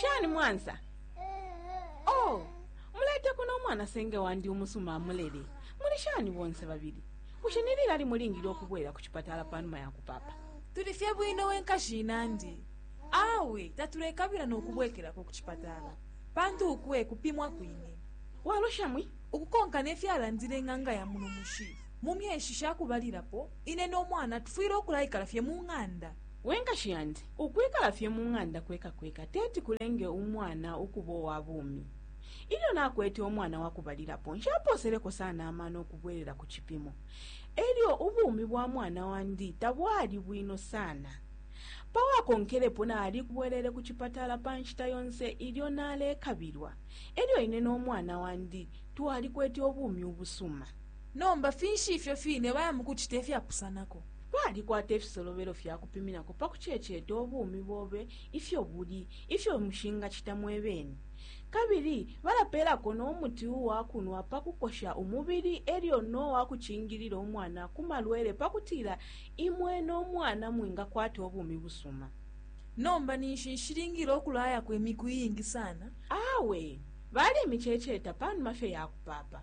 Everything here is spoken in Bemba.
shani mwansa oh mulete kuno umwana senge wandi umusuma amulele muli shani bonse babili bushe ni lilali mulingile ukubwela ku cipatala pa numa ya kupapa tuli fye bwino wenkashi inandi awe tatulekabila n'okubwekerako ku cipatala pantu ukwe kupimwa kwine walosha mwi ukukonka nefyalandile ng'anga ya muno mushi mu myeshi shakubalirapo ine n'omwana tufwile okulayikala fye mu ng'anda We nkashi yandi, ukwikala fye mu ng'anda kweka kweka teti kulenge umwana ukuba uwa bumi. Ilyo nakwete umwana wa kubalilapo, nshapooseleko sana amano ukubwelela ku cipimo, e lyo ubumi bwa mwana wandi tabwali bwino sana. Pa wakonkelepo nalibwelele ku cipatala pa nshita yonse ilyo nalekabilwa, e lyo ine no mwana wandi twalikwete ubumi ubusuma. Nomba finshi ifyo fine baya mu kucita ifyapusanako? Kwalikwata ifisolobelo fya kupiminako pa kuceeceeta ubumi bobe ifyo buli, ifyo mushingacita mwe bene. Kabili balapeelako no muti uwa kunwa pa kukosha umubili e lyo no wa kucingilila umwana ku malwele pa kutila imwe no mwana mwingakwata ubumi busuma. Nomba ninshi nshilingile ukulayako imiku iingi sana? Awe, balemiceeceeta pa numa fye ya kupaapa.